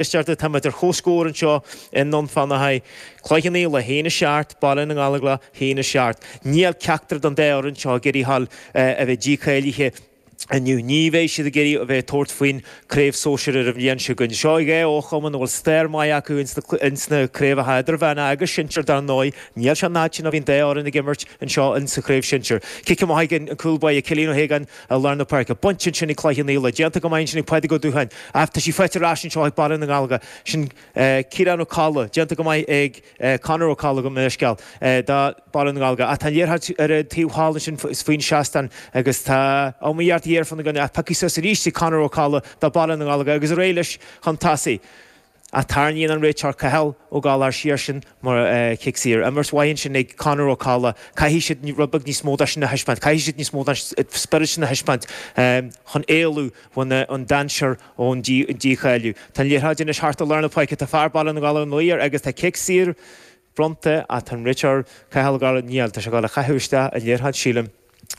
Is deirtear táimid ar chomhscór anseo i nDún Fionnachaidh. Cloich Cheann Fhaola a haon a seacht, Baile na nGallóglach a haon a seacht. Níl ceachtar den dá fhoireann seo ag iarraidh a dhul a bheith dícháilithe inniu. Ní bheidh siad ag iarraidh a bheith ag tabhairt faoin Craobh Sóisear ar an bhliain seo chugainn. Seo dhá fhochumann a bhfuil stair maith acu ins na craobhacha Idirmheánacha agus Sinsear dar ndóigh. Níl sé an fhad sin ó bhí an dá fhoireann ag imirt anseo insa Chraobh Sinsear. Cic amach ag an cúl báire Cillian Ó hAogáin. i lár na páirce. Bainte ansin ag Cloich Cheann Fhaola. Déanta go maith ansin ag Pádraig Ó Dúcháin. Ach tá sí faighte ar ais anseo ag Baile na nGallóglach. Sin Ciarán Ó Colla. Déanta go maith ag Conor Ó Colla, gabh mo leithscéal, do Baile na nGallóglach. Ach tá an liathróid ar an taobh thall ansin faoin seastán agus tá iomaíocht ghéar ann ach pioctha suas arís ag Conor Ó Colla, do Baile na nGallóglach, agus ar aghaidh leis chun tosaigh. Ach tarraingíonn an réiteoir Cathal Ó Gallchóir siar ansin mar chic saor. Imirt mhaith ansin ag Conor Ó Colla, caithfidh siad rud beag níos mó de sin a thaispeáint, caithfidh siad níos mó den spiorad sin a thaispeáint chun éalú ón dainséar, ón dícháiliú. Tá an liathróid anois thart i lár na páirce, tá fear Baile na nGallóglach ar lár agus tá cic saor bronnta ach tá an réiteoir Cathal Ó Gallchóir, níl, tá sé ag dul a chaitheamh isteach an liathróid sílim.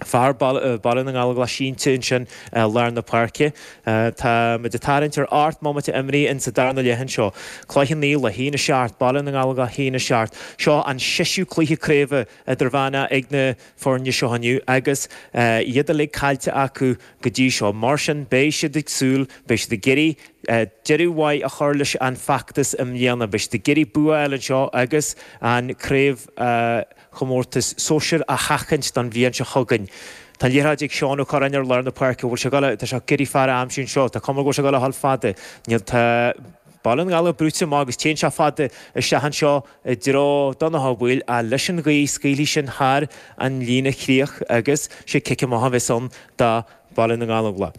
fear Baile na nGallóglach sínte ansin i lár na páirce. Tá muid ag tarraingt ar ocht mbomaite imeartha insa darna leath anseo. Cloich Cheann Fhaola a haon a seacht, Baile na nGallóglach a haon a seacht. Seo an seisiú cluiche craoibhe idirmheánach ag na foirne seo inniu agus iad uilig caillte acu go dtí seo. Mar sin beidh siad ag súil, beidh siad ag iarraidh deireadh mhaith a chur leis an bhfeachtas i mbliana. Beidh siad ag iarraidh bua a fháil anseo agus an craobh chomórtas sóisir a sheachaint don bhliain seo chugainn. Tá an liathróid ag Seán Ó Curráin ar lár na páirce. Bhfuil sé ag dul a. Tá sé ag iarraidh fear a aimsiú anseo. Tá cuma air go bhfuil sé ag dul a dhul fada. Níl. Tá Baile na nGallóglach brúite amach agus téann sé fada isteach anseo i dtreo Donnchadh Ó Baoill ach leis an ghaoth scaoilfidh sin thar an líne chríoch agus sé cic amach a bheas ann do Baile na nGallóglach.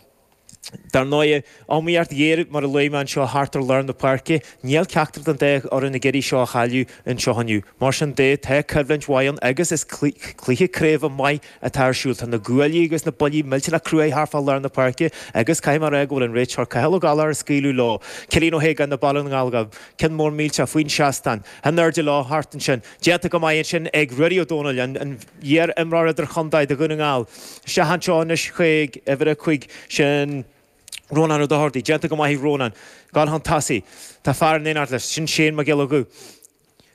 Dar ndóigh, iomaíocht ghéar mar a luaigh mé anseo thart ar lár na páirce. Níl ceachtar den dá fhoireann ag iarraidh seo a chailleadh anseo inniu. Mar sin de, tá coimhlint mhaith ann agus is cluiche craoibhe maith atá ar siúl. Tá na guaillí agus na buillí millteanach cruaidh thart fá lár na páirce agus caithfidh mé a rá go bhfuil an réiteoir Cathal Ó Gallchóir ag scaoileadh leo. Cillian Ó hAogáin do Baile na nGallóglach, ceann mór millteach faoin seastán. In airde leo thart ansin. Déanta go maith ansin ag Ruairí Ó Domhnaill, an iar-imreoir idir-chontae do Dhún na nGall, isteach anseo anois chuig uimhir a 5, sin Rónán Ó Dochartaigh. Déanta go maith ag Rónán ag dul chun tosaigh. Tá fear in éineacht leis, sin Shane Mac Giolla Dhuibh.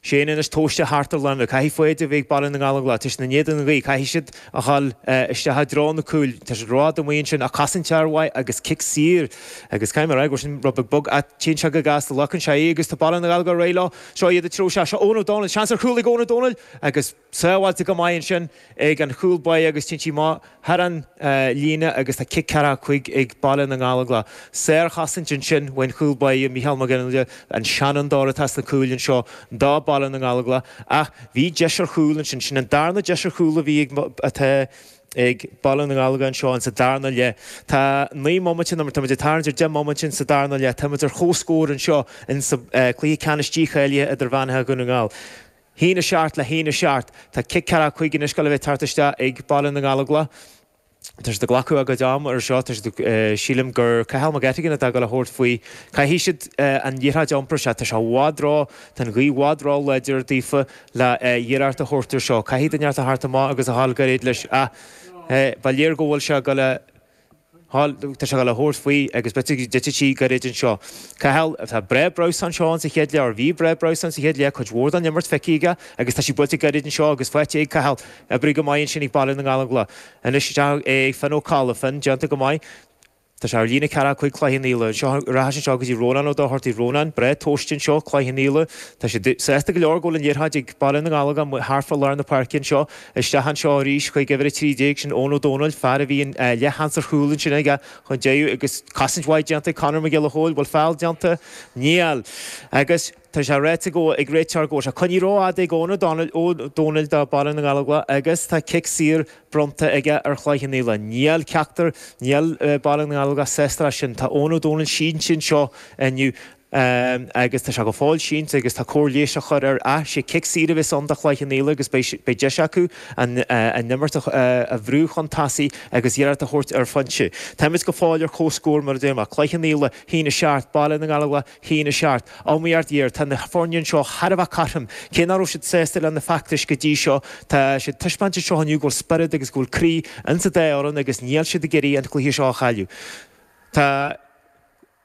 Shane anois tomhaiste thart ar láimhe. Caithfidh foighid a bheith ag Baile na nGallóglach, tá siad in éadan na gaoithe. Caithfidh siad a dhul isteach i dtreo na cúil. Tá siad rófhada amuigh ansin ach casann tear uaidh agus cic saor agus, caithfidh mé a rá, go bhfuil sin rud beag bog ach téann sé go gasta, glacann sé í agus tá Baile na nGallóglach ar aghaidh leo. Seo iad a triúr, Sea, seo Eoin Ó Domhnaill, seans ar chúl ag Eoin Ó Domhnaill agus sábháilte go maith ansin ag an chúl báire agus téann sí amach thar an líne agus tá cic ceathracha cúig ag Baile na nGallóglach. Sárchosaint ansin ón chúl báire Micheál Mac Fhionnghaile, an seanfhondóir atá sna cúil anseo do Baile na nGallóglach ach bhí deis ar chúl ansin, sin an darna deis ar chúl a bhí ag ag Baile na nGallóglach anseo in sa darna leith. Tá naoi mbomaite nó mar táimid ag tarraingt ar deich mbomaite in sa darna leith, táimid ar chomhscór anseo in sa cluiche ceannais dícháilithe idirmheánach Dhún na nGall. A haon a seacht le a haon a seacht. Tá cic ceathracha cúig anois le bheith tabhartha isteach ag Baile na nGallóglach. Tá siad ag glacadh a gcuid ama ar seo. Tá siad ag, sílim gur Cathal Mac Eiteagáin atá ag dul a thabhairt faoi. Caithfidh siad an liathróid a iompar. Sea, tá sé i bhfad ró, tá an ghaoth i bhfad ró láidir daofa. le hiarracht a thabhairt air seo. Caithfidh duine inteacht a theacht amach agus a dhul gairid leis ach ba léir go bhfuil sé ag dul a dhul, tá sé ag dul a thabhairt faoi agus beidh tú digití gairid anseo. Cathal, Tá Breá Breus anseo in sa chéad leath, bhí Breá Breus in sa chéad leath, cuid mhór den imirt feicthe aige agus tá sí buailte gairid anseo agus faighte ag Cathal. Oibrithe go maith ansin ag Baile na nGallóglach. Anois isteach ag Finn Ó Colla. Finn, Déanta go maith. Tá sé ar líne ceathracha cúig Chloich Cheann Fhaola anseo ar ais anseo go dtí Rónán Ó Dochartaigh Rónán, breá tomhaiste anseo, Cloich Cheann Fhaola, tá sé sásta go leor go bhfuil an liathróid ag baile na nGallóglach amuigh thart fá lár na páirce anseo, isteach anseo arís chuig uimhir 13, sin Eoin Ó Dónaill, fear a bhí an leath-sheans ar chúl ansin aige chun deiridh agus cosaint mhaith déanta ag Conor Mac Giolla Chóill, bhfuil feall déanta? Níl! Agus. Tá sé ráite ag an réiteoir go bhfuil sé coinnithe ró-fhada ag Eoin Ó Domhnaill do Baile na nGallóglach agus tá cic saor bronnta aige ar Chloich Cheann Fhaola. Níl ceachtar Níl Baile na nGallóglach sásta leis sin. Tá Eoin Ó Domhnaill sínte anseo inniu agus tá sé go fóill sínte agus tá cóir leighis á chur air ach sé cic saor a bheas ann do Chloich Cheann Fhaola agus beidh deis acu an imirt a bhrú chun tosaigh agus iarracht a thabhairt ar phointe. Táimid go fóill ar comhscór mar a déarfá. Cloich Cheann Fhaola, a haon a 7, Baile na nGallóglach a haon a seacht. Á mí art iarr tá na foirne anseo thar a bheith cothrom. Cé nach raibh siad sásta le na feachtais go dtí seo tá siad ag taispeáint anseo inniu go bhfuil spiorad agus go bhfuil croí insa dá fhoireann agus níl siad ag iarraidh an cluiche seo a chailleadh. Tá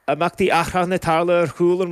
imeachtaí achrannacha ag tarlú ar chúl an